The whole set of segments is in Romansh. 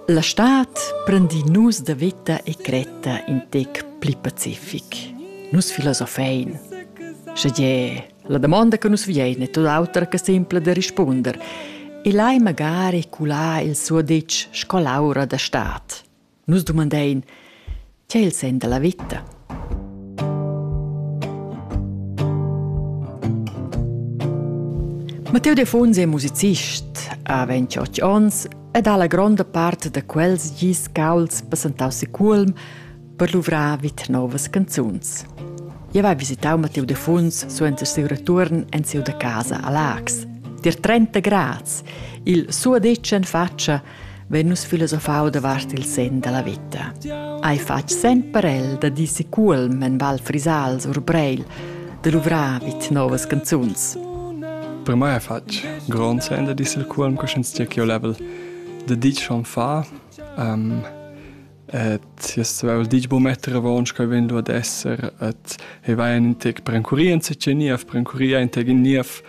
La stad prendin nus da veta e cretta in tec pli pacific. Nus filosofein. Sche gie, la damonda che nus viein è tot auter che simpla da rispunder. E lai magari culà il suo detg sco l'aura da stad. Nus dumandein, tgei il sen dalla vita? Matteo Defonsi è musicist, ha 28 onns ed ha la gronda part da quels gis cauls passentau si Culm per luvrar vit novas canzuns. Io vai visitau Matteo Defons suenter siu return en siu da casa a Lax. Dir 30 grads, il suo decen faccia vegn nus filosofau davart il sen dalla veta. Hai fatg sen per el da dir si Cuolm en Val Frisals or Breil da luvrar vid novas canzuns. Per mai hai fatg grond sen da dir il Cuolm che sch'ins dia ch'io level da dir schon fa um, et jes vevel dich bo metter avons che ven du ad esser et e vai in tec prencuria in secce niev prencuria in tec in niev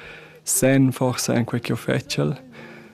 sen forse in quei che ho fecel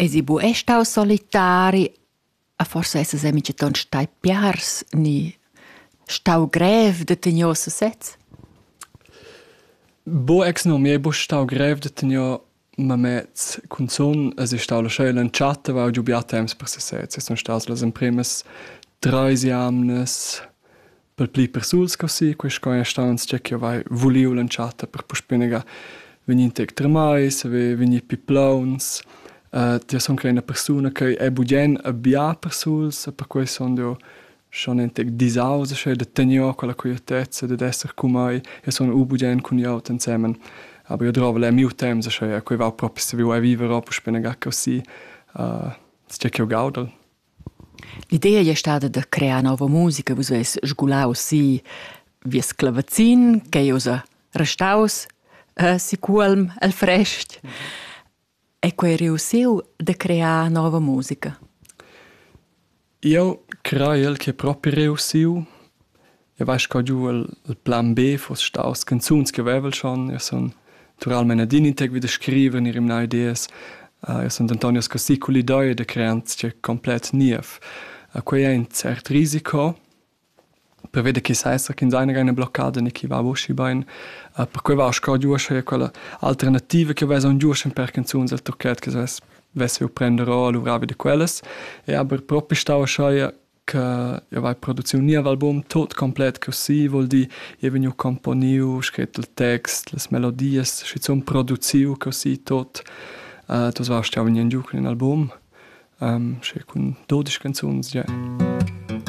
Esi bu ei stau solitari? A forsa essas ei mintgaton stai piars ni stau grev da tegner sesez? Bo ex no, mi ei buca stau grev da tegner mamez. Cunzun es ei stau la scheula entschatta, aveva giu bia temps per sesez. E sun stas las empremas treis jamnas per pli persuls co si, quei sco ei staus tgei ch'jeu vai vuliu l'entschatta per puspei negar vegnir tec tremais, vegnir pli plauns. jeu sun quella ina persuna che ei bugien bia persuls, perquei sun jeu schon in tec disaus sche da tegnier quella quietezza dad esser cun mei e sun u bugien cun glieud ensemen. Aber jeu drovel er miu temps, sche quei va propi saviu ei viver, puspei negar co si, tgei ch'jeu gaudel. L'idea ei stada da crear nova musica, vus veis sgulau si vies clavazin ch'ei ussa restaus eh, si Cuolm el frest e quei ei reussiu da crear nova musica. Eu craiel che propi reussiu E vai sco giu il plan B fuss staus canzuns che vevel schon, io sun naturalmein adina integvi da scriver, ni rimnar ideas. Uh, io sun denton ius così cull idea da crear sia complet niev. Uh, quei è in cert risiko, prevede che sa esser che seine eine Blockade ne chi va boschi bein uh, per quei va sco giusch e quella alternativa che vesa un giusch per canzuns al tocchet che ses vesse prender o luvravi de quellas e aber propi stau schai che io vai produziu nia album tot complet così vuol di io vegniu componiu scret il text las melodias schizun produziu così tot uh, das warst ja vegniu giu cun in album um, sche cun 12 canzuns ja yeah.